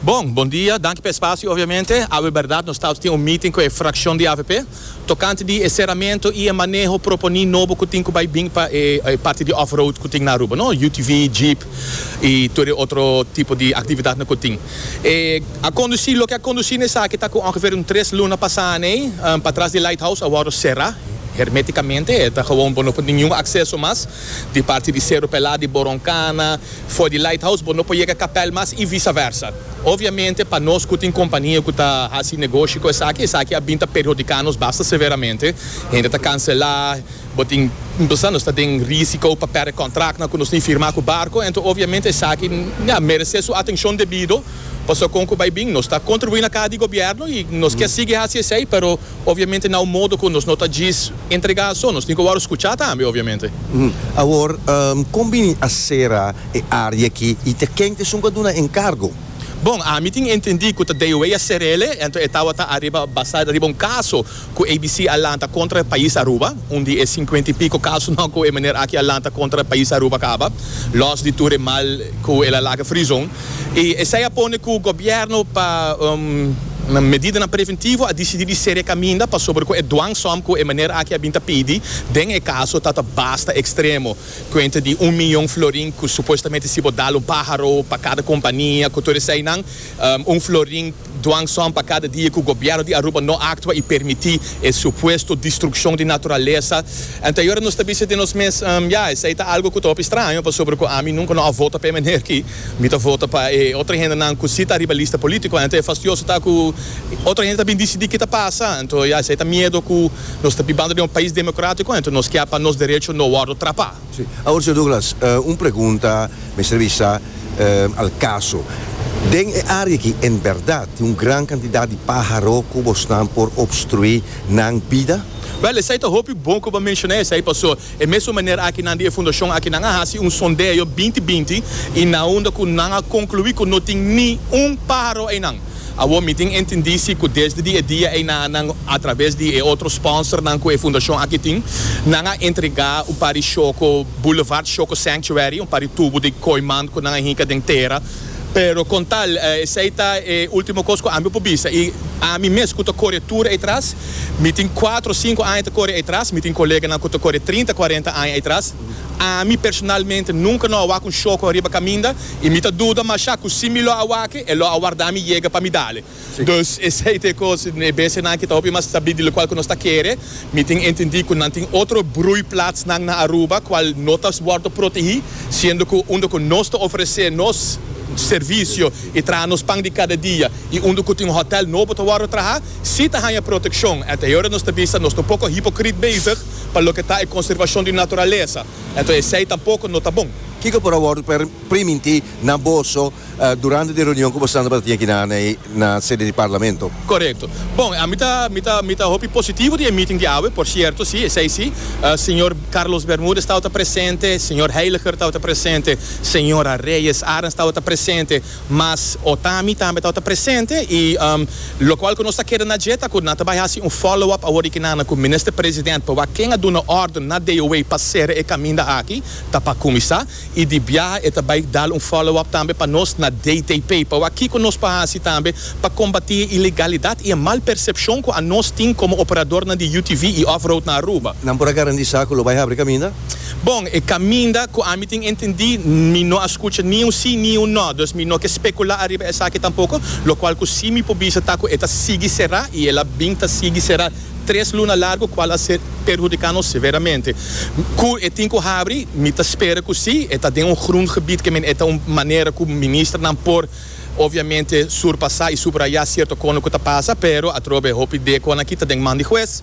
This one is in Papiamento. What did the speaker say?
Bon, bon dia. Danki pa e spasio. Obviamente, awe berdad nos ta tin un meeting cu e fraccion di avp tocante di e ceramento y e maneho proponi nobo cu tin cu bay bin pa e parti di off-road cu tin na Aruba, no? UTV, jeep y tur e otro tipo di actividadnan cu tin. E a conduci, loke a conduci na esaki ta cu ongeveer un tres luna pasa aney, patras di Lighthouse a wordo cera hermeticamente. E ta gewoon bo no por niun acceso mas di parti di Cerro Pelá, di Boroncana, For di Lighthouse bo no por yega kapèl mas i visaversa. Obviamente pa nos ku tin kompania ku ta hasi negoshi ku esaki, esaki a bin ta perhudiká nos basta severamente. Hende ta kanselá, bo tin bisa nos ta den risiko pa pèrdè kontraktnan ku nos tin firmá ku barko. Anto obviamente esaki a meresé su atenshon debido, pasobra kon ku bai bin nos ta kontribuí na kas di gobièrnu i nos ke sigui hasi esei, pero. Obviamente na un modo cu nos no ta djis entrega aso, nos tin cu wou scucha tambe obviamente. Awor, con bini a cera e area aki y ta ken ta esun cu a duna encargo? Bon, ami tin entendi cu ta DOA a cerel e, anto e tawata ariba basa riba un caso cu ABC a lanta contra pais Aruba, un di e cincuenta y pico casonan cu e meneer aki a lanta contra pais Aruba caba, los di tur e mal cu el a laga frizon. I esei a pone ku gobièrnu pa medidanan preventivo a disidí di serie kaminda pasobra ku e dwangsom ku e meneer aki a bin ta pidi den e kaso ta ta basta ekstremo, kuenta di un miyon florin ku supuestamente si bo dal un páharo pa kada kompania ku tur eseinan, un florin. Dwangsòn pa kada dia ku gobièrnu di Aruba no aktua i permití e supuesto destrukshon di naturalesa. Anto ayora nos ta bisa den nos mes, Ya, esei ta algu ku ta hopi straño pasobra ku ami nunka no a vota pa e maner ki. Mi ta vota pa e otro hendenan ku si ta riba lista polítiko. Anto e fastioso ta ku otro hende ta bin disidí ke ta pasa. Anto, ya, esei ta miedu ku nos ta bibando den un pais demokratiko. Anto nos kier pa nos derecho no wòrdu trapá. Sí. Awor Señor Douglas, un pregunta mester bisa al caso. Den e área aki en berdad tin un gran cantidad di pájaro cu bosnan por obstruí nan bida? Wel, esei ta hopi bon cu bo a menciona esei paso e mesun manera aki nan di e fundacion aki nan a haci un sondeo binti binti y nan unda cu nan a conclui cu no tin ni un pájaro einan. Awor mi tin entendí si ku desde di e dia ei na a nan atraves di e otro sponsornan ku e fundashon aki tin, nan a entregá un par di shoko Boulevard Shoko Sanctuary, un par di tubu di koimand ku nan a hinka den tera. Pero kon tal, esei ta e último kos ku ami por bisa. I ami mes ku ta kore tur ei tras, mi tin kuatro, sinku aña ta kore ei tras, mi tin koleganan ku ta kore trinta, kuarenta aña ei tras, ami personalmente nunka no a wak un shoko riba kaminda. y mi ta duda masha cu si mi lo a wak e lo a warda mi yega pa mi dale. Dus esey ta e cos e besenan ki ta hopi mas sabí di locual cu nos ta kere. Mi tin entendí cu nan tin otro broeiplaatsnan na Aruba cual no ta wordo protegí, siendo cu unda cu nos ta ofrece nos servicio y traha nos pan di cada dia y unda cu tin hotel nobo ta wordo traha, sí ta haya proteccion. Anteora nos ta bisa nos ta un poco hipocrit bezig pa loke ta e conservacion di naturalesa. Enton esei tampoco no ta bon. Kico por a wordo per primintí na boso durante di reunion cu boso tabata tin aki na na e na sede di Parlamento? Corecto. Bon, ami ta mi ta mi ta hopi positivo di e meeting di awe, por cierto si, esei si. Señor Carlos Bermudez tabata presente, señor Heiliger tabata presente, señora Reyes Arens tabata presente. Mas Otami tambe tabata presente y locual cu nos ta keda na dje ta cu nan ta bay haci un follow up awor di ki nana cu Minister President pa wak ken a duna orden na DOA pa cera e caminda aki ta pa cuminsa y di biaha e ta bay dal un follow up tambe pa nos na DTP pa wak kico nos por haci tambe pa combati e ilegalidad y e mal percepcion cu a nos tin como operadornan di UTV y off-road na Aruba. Nan por a garantisa cu lo bay habri caminda? Bon, e kaminda ku ami tin entendí, mi no a skucha ni un sí ni un nò, dus mi no ke spekulá ariba esaki tampoko, lokual ku sí mi por bisa ta ku e ta sigui será i el a bin ta sigui será tres luna largu kual a perhudiká nos severamente. Ku e tin ku habri? Mi ta spera ku sí, e ta den un grùn gebied ke men e ta un manera ku ministernan por obviamente surpasá i subrayá sierto kono ku ta pasa, pero atrobe hopi de kon aki ta den man di hues.